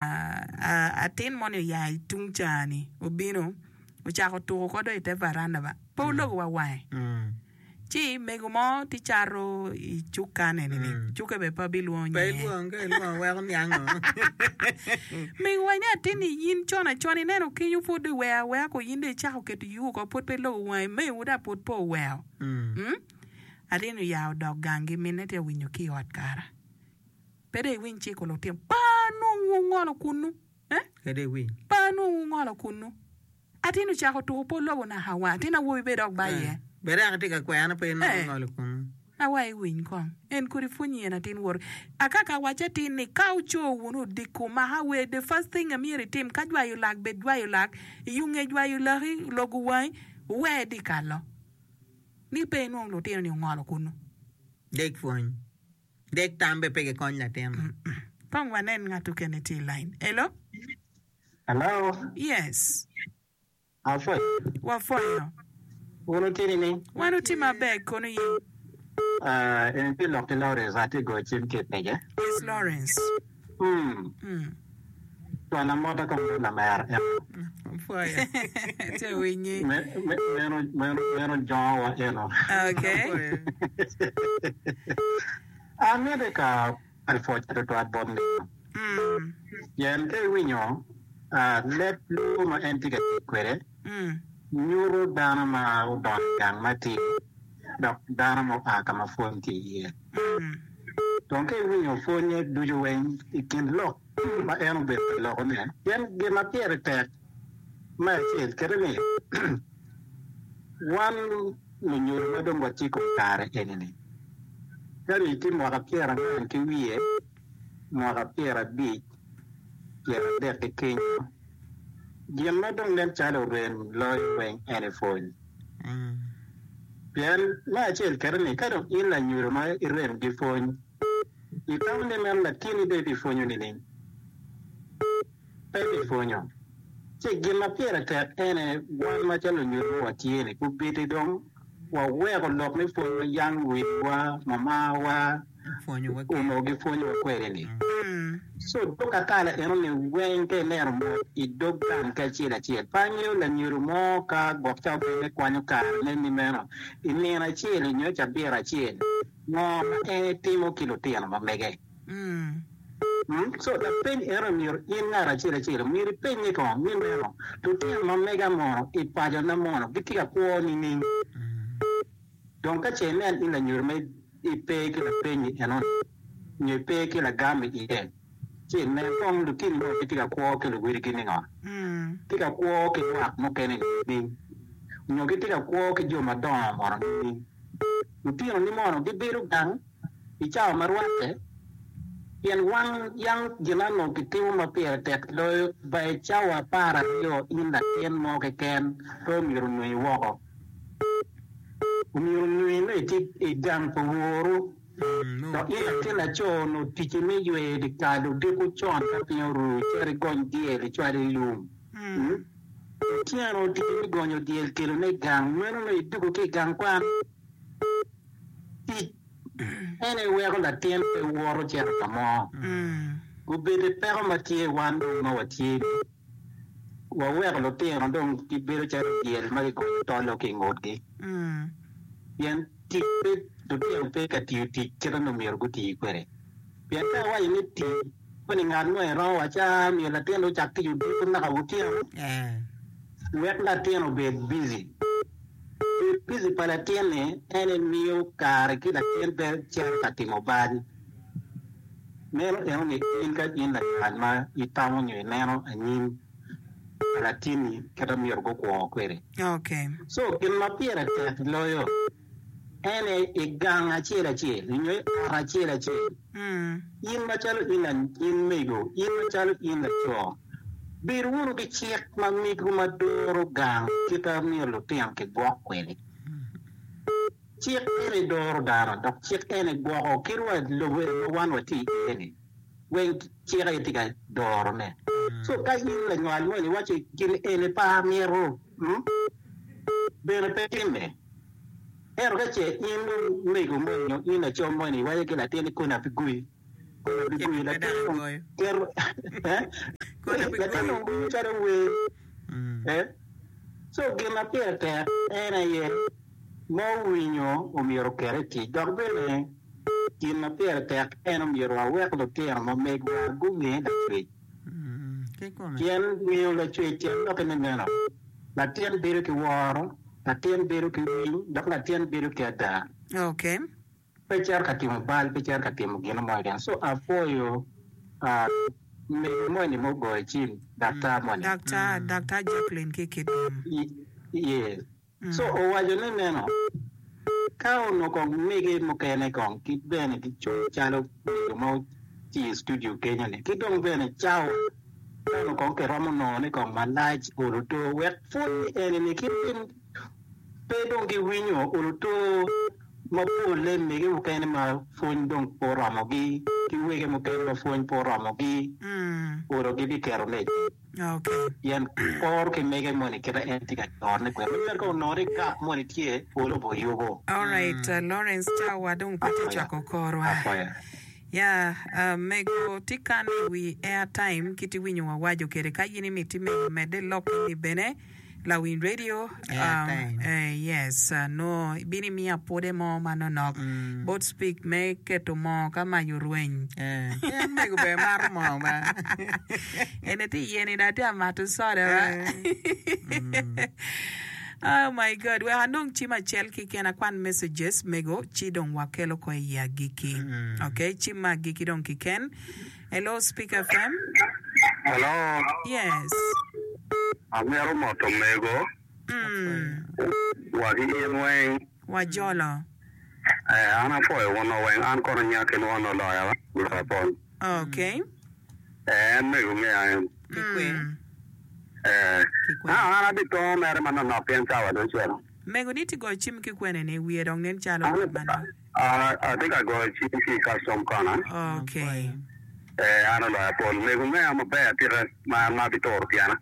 Atin moni oya i tung ca-ni, obino, ocako tuko ko dong i te varanda ba, pe ologo wa wange. Ci mego mo tye cato i cukane ni, cuke bene pe abilwongo nyinge. Pe ilwong, ka ilwongo weko niang ngo? Mego wa ni, Atin-ni, in con acon ineno kenyo pud dong iweo awea ko, in dong icako keto iyuku oko, pud pe ilogo wangi, mewu dong pud pe oweo. Atin-ni oya odok gangi, minne tye ka winyo ki i ot kara. Pe dong iwiny ciko lutino pa nongo wungolo kunnu, pa nongo wungolo kunnu. Atin ocako tuko pol lobo naka wa. Atin awobi bene dok ba iye. Ee, na wa iwiny kong. En kodi pwonyi en atin wori. Akaka awacci atin ni ka wuco wunu odiko maka awer, the first thing a myero itim, ka jwayo lak bed jwayo lak, yunge jwayo laki, logo wangi, wuwer dikalo ni pe inwong lutino ni ongolo kunnu. Dek pwony. Dek tam be pe gikony latin. Kong wanen ngat okene tye i line. Hello? Hello? Yes. Apwoyo. Wapwoyo. Wun wutini ni? Wan wuti maber, kono yin? Aa, en pi lok ki Lawrence, atye goyo cim ki i pege. Yes, Lawrence. Cwala mota ka mot lamera eno. Meno jongowa eno. Amiti ka pwoc tutwal bot nino. Pien ka iwinyo leb lwongo ma en tye ka tic kwede nyuto dano ma odongo i gang matidi. dok dano mo pa ka ma pwony tye iye. Dong ka iwinyo pwonye ducu weng i kin lok ma en obedo ka lokone, pien gin ma pire tek me acel kite ni wan lunyodo ma dong watye i kom kare eni-ni, ka ni tye mwaka pyerangwen ki wiye, mwaka pyerabic, pyeradek ki kenyo, gin ma dong nen calo orem loyo weng eni pwony. Pien me acel kete ni, ka dong in lanyodo ma irem gi pwony, itamo ni meno latinni dong ibipwonyo nining? Pe ibipwonyo. Ci gin ma pire tek en aye, wan macalo onyodo ma watye-ni, obedi dong waweko lok me pwony ma yam wiwa, mamawa, onongo gipwonyowa kwede-ni. Co dok akala enoni weng ka ilero mot i dog gang ki acel acel. Pe angeyo lanyodo mo ka gwok cawa bene kwanyo karene ni meno i nino acel-li nyo cabit acel ngo ma en etimo ki lutino ma mege. Co lapeny enoni myero in ngat acel acel myero ipenye kong ni meno lutino ma mega mono i pacona mono gitye ka kwo nining? Dong ka ce inen in lanyodo ma. i pe ki lapenyi enoni, nyo i pe ki lagam i iye, ci i nen kong lutini mo gitye ka kwo ki luwiligi ningo, gitye ka kwo ki lwak mukene nining? Nyo gitye ka kwo ki jo madongo mono nining? Lutinoni mono gibedo gang i cawa ma rwatte? Pien wan yam gin ano kitimo ma pire tek loyo ba i cawa apar aryo in latin mo keken pe omyero onongi woko? omyero nonge ni tye i gang pa woru. Dok in latin laco, nongo ticci me yweyo dyekal odiko con ka piny oru, icit igony dyel icwal i lum. Otyeno ticci me gonyo dyel kelone i gang, meno nongo idwogo ki i gang kwan? Tic ene weko latin pe wot ocito ka mo. Gubedde peko ma tye i wan dong ma watye-ni. waweko lutino dong gibedo calo dyel ma kigoyo tol-lo ki i ngutgi. Pien tic pe, lutino pe ka tiyo tic kite ma myero guti kwede. Pien ka iwaco ni ti, koni ngat mo iromo waco, aa, myero latinni ocak tic odiko naka otyeno? Wek latin obed bici. Bedo bici pa latinni en emiyo kare ki latin pe cito ka timo bal. Meno timo ni in ka in lakat ma itamo nyo ineno anyim pa latinni kit ma myero gukwo kwede. Co gin ma pire tek loyo en aye i gang acel acel nyo i ot acel acel in macalo in anyim mego, in macalo in laco, bed wunu ki cik ma migwu ma doro gang kit ma myero lutino kigwok kwede. Cik ene doro dano, dok cik ene gwoko kitwa i lobo ma wan watye iye-ni. Weng cik aye tye ka dorone. So, ka in lanywal moni iwaco ni, 'Gin eni pe amito, bene pe timme. Ento ka ce in omego moni nyo in lacam moni iwaco ki latinni koni ape goi. Kona bigwi i latin tito eh latin onongo winyo calo wer eh co gin ma pire tek en aye ma owinyo omyero oket i tic dok bene gin ma pire tek en omyero wawek lutino mamegwa gunge Lacwec pien ngeyo Lacwec tyen doki me meno latin bedo ki woro, latin bedo ki winy dok latin bedo ki ada. Pe cito ka timo bal, pe cito ka timo gino mo keken. So apwoyo mego moni ma ogoyo cim, daktar moni. Daktar, Daktar Jacqueline ki i Kitgum. Yes. So owaco ni nino, ka onongo kong mege mukene kong kit bene gicung calo mego ma oti i studio kenyo ni, ki dong bene cawa ka onongo kong kiromo nongo ni kong malac olo to wek pwod ni eni ni ki pe dong giwinyo olo to ma polle mege mukene ma pwony dong pe oromogi ki wege mukene ma pwony pe oromogi, olo gibiketo me icuk. Pien poro ki mege moni kite en tye ka corone kwede, ma nyero ka onongo ni gap moni tye, olo be oyubo. Alright Lawrence cawa wa dong pe tye cwako kor wa. Ya mego ti kane i wi airtime kit iwinyo wawaco kede ka in imiti mego mede lok eni bene. lawiny radio yes nongo ibino imiya pwode mo manonok bot speak me keto moo ka mac orweny ki an mego bene amato moo ma eni tye i yeni dong atye ka mato coda ma oh my God wek anong cim acel keken akwan messages mego ci dong wakelo ko iye agikki ok cim ma agikki dong kiken. Hello speak FM. Hello. Yes. Amito moto omego. Mm. Wagi in weng. Wajolo. Eh, an apwoyo wun weng. An kono nya kin won oloya wa. Gura pol. Okay. Eh, en mego ngeya en. Kikwe. Mm. Eh. Kikwe. Ah, an abi tongo mere manonok pien cawa dong cito. Mego ni ti go cim ki kwene ni wiye dong nen calo An- bot manok. Atye ka goyo cim ki i Custom Kona. Ee, an oloyo apol. Omego me a maber atika ma an ma abituro tyena.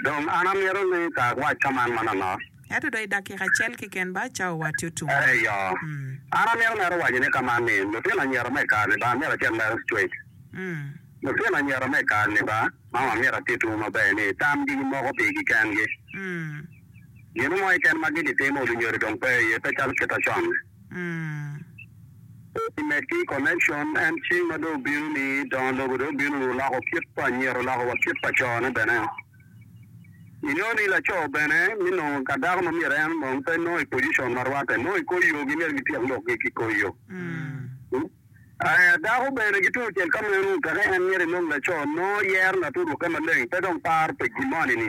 Dong an amito ni ka awac ka man manonok. Ento dong i dakika acel keken ba cawa wati otum. Eyo. An amito mere waco ni ka man ni, lutino anyira me i kare-ni ba myero acit lero straight. Lutino anyira me i kare-ni ba, ma amito atitwu maber ni, tamgi gimoko pigi kengi. Gin mo keken ma gin itimo odi nyodi dong pe iye, pe calo kite con. Pe imed ki connection en cing ma dong obino ni dongo lobo dong obino ni oloko kit pa anyira oloko wa kit pa co ne bene. Inongo ni laco bene ni nongo ka dako ma myero en onong pe nongo i position ma rwate nongo i kor yo gi myero gi tyek lok gi ki kor yo. Dako bene ki tung cel ka meno teke en myero inong laco nongo yero laturuke maleng pe dong paro pa gin moni ni.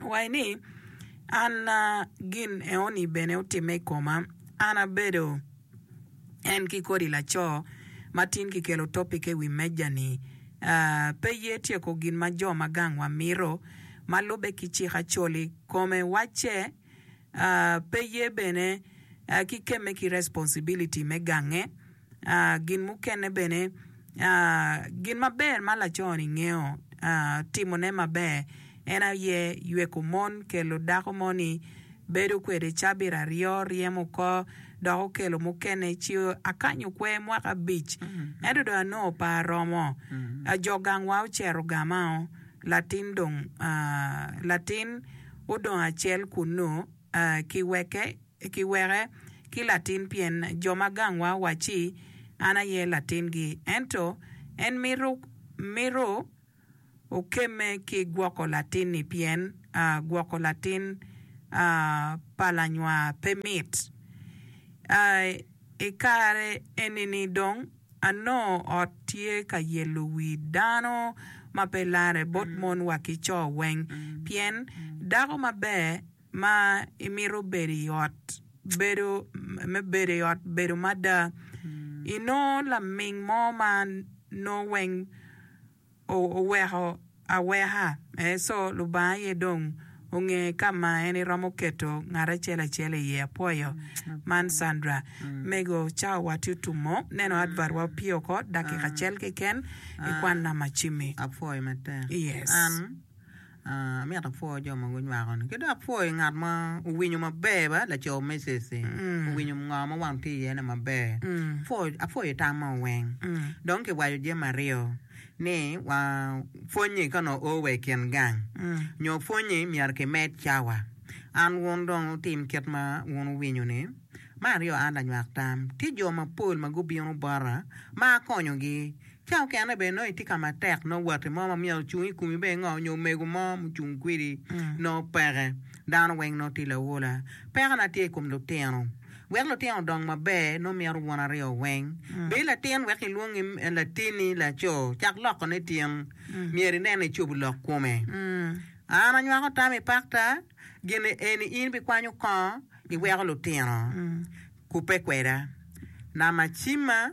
Owaco ni, An gin enoni bene otimme i koma, an abedo en ki kodi laco ma tin kikelo topike i wi meja-ni. Pe ye tyeko gin ma jo ma gangwa mito, ma lubbe ki cik Acholi, kome wacce. pe ye bene ki kemme ki responsibility me gange. Gin mukene bene, gin maber ma laco-ni ngeyo timone maber en aye yweko mon, kelo dako moni bedo kwede cabit aryo, ryemo oko dok okelo mukene ci akanyo kwer mwaka abic ento dong anongo pe aromo. Jo gangwa ocero gamao. Latin dong latin odong acel kunnu ki weke ki weke ki latin pien jo ma gangwa wacci an aye latingi. Ento en mito mito okemme ki gwoko latinni pien gwoko latin pa lanywa pe mit. I kare enini dong Anongo ot tye ka yelo wi dano ma pe larre bot mon wa ki co weng. Pien dako maber ma imito bedo i ot bedo me bedo i ot bedo mada. Inongo laming mo ma nongo weng oweko aweka. So, Lubanga aye dong onge ka ma en eromo keto ngat acel acel iye. Apwoyo man Sandra. Mego, cawa wa tye otumo. Neno advert wa opye oko dakika acel keken ikwan namba cimi. Apwoyo matek. Yes. Amito apwoo jo ma gunywako ni ki dong apwoo ngat ma owinyo maber ba laco Mrs ni owinyo ngo ma wang tye iye ni maber apwoyo tam mo weng dong ki waco jami aryo ni wa pwony ni ka nongo oo wa i kin gang nyo pwony ni myero ki med cawa an wun dong wutim kit ma wun wuwinyo ni me aryo an lanywak tam tye jo mapol ma gubino bota ma akonyo gi. Ca okene bene nongo itye ka matek, nongo watti mo ma myero ocung i komi bene ngo nyo omego mo mucung kwedi nongo peke. Dano weng nongo tye lawola. Peko na tye i kom lutino. Wek lutino odong maber nongo mito wun aryo weng. Bed latin wek ilwongi latini laco, cak lokone tin. Myero inen ni icobo lok kome. An anywako tam i pakta, gin eni in bikwanyo kongo iweko lutino kubbe kweda. Nama cimma.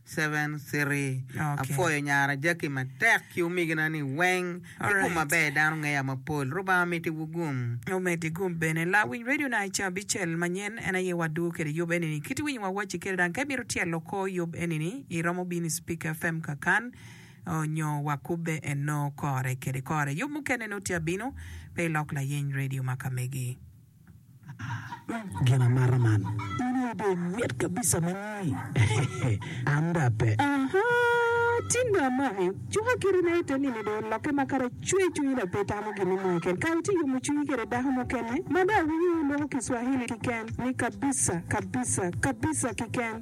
Seven City, Apwoyo nyara Jackie matek ki omegina ni weng ki gum maber dano ngeya mapol. Rubanga omiti wu gum. Omedi gum bene. Lawiny radio na i cabicel manyen en aye wadwo kede yub enini. Kit winyo wa waci kede dang ka imito tyelo kor yub enini i romo bino i speaker fm kakan onyo wa kubbe eno kore kede kore. Yub mukene noti abino pe ilok layeny radio maka megi. Gin amata man. In aye be mit kabisa mani. Anda pe. Aha, tin dong amaki. Cuka kite na ite ni ni dong olokke ma kara cwer cwinyi dok pe itamo gin mo keken. Kara itye yomo cwinyi kede dako mukene ma dong awinyo loko kiswahili kiken ni kabisa, kabisa, kabisa kiken.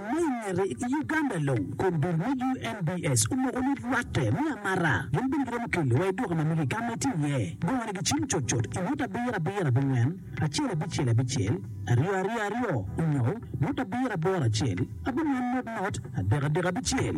Ma i ngete, i Uganda long, kombeddi me UNBS omoko ni rwatte me amara gin bene giromo keli wa i duka ma mege ka ma itye iye. Gongone gicimo cut cut i ngut abiro abiro abingwen, acel abicel abicel, aryo aryo aryo, onyo ngut abiro aboro acel, abingwen not not, adek adek abicel.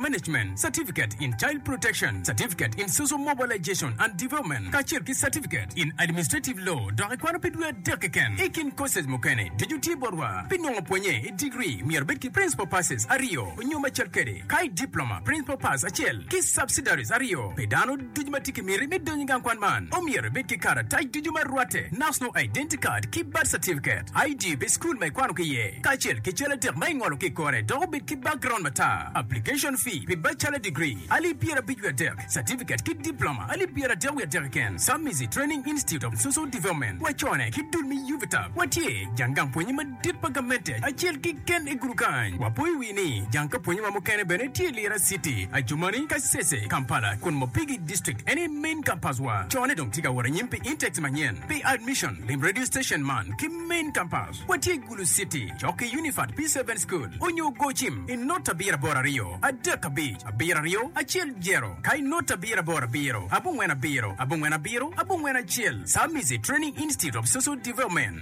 Management Certificate in Child Protection, Certificate in Social Mobilization and Development, kacel ki Certificate in Administrative Law dok ikwano pi dwe adek keken. I kin courses mukene, ducu tye botwa. Pi nongo pwonye i degree, myero ibed ki Principal Passes aryo nyo macel kwede, kayi Diploma, Principal Pass acel, ki Subsidiaries aryo pi dano. Ducu ma tye ki miti me donyo i gang kwan man omyero ibed ki karatac ducu ma rwatte, National Identity Card ki Birth Certificate, ID pi cukul ma ikwano ki iye, kacel ki cal adek ma ingolo ki i kore dok obed ki background matar. Application fee pi Bachelor Degree, alip pyerabic wiye adek, Certificate ki Diploma, alip pyeradek wiye adek keken, Submizi Training Institute of Social Development, wacone ki dul me UVTAB, watye jang gang pwonye madit. Tit pa gamente acel kiken i gudu kany. Wapo i wi ni jang ka pwonye ma mukene bene tye Lira City, Adjumani, Kasese, Kampala, kun Mopigi District en aye main campus wa. Cone dong tye ka wot anyim pi intakes manyen. Pi admission, lim radio station man ki main campus. Watye i Gulu City, cok ki Unifat P-Seven School onyo gocim i not abiro aboro aryo, adek abic, abiro aryo, acel jero, ka i not abiro aboro abiro, abongwen abiro, abongwen abiro, abongwen acel, Samizi Training Institute of Social Development.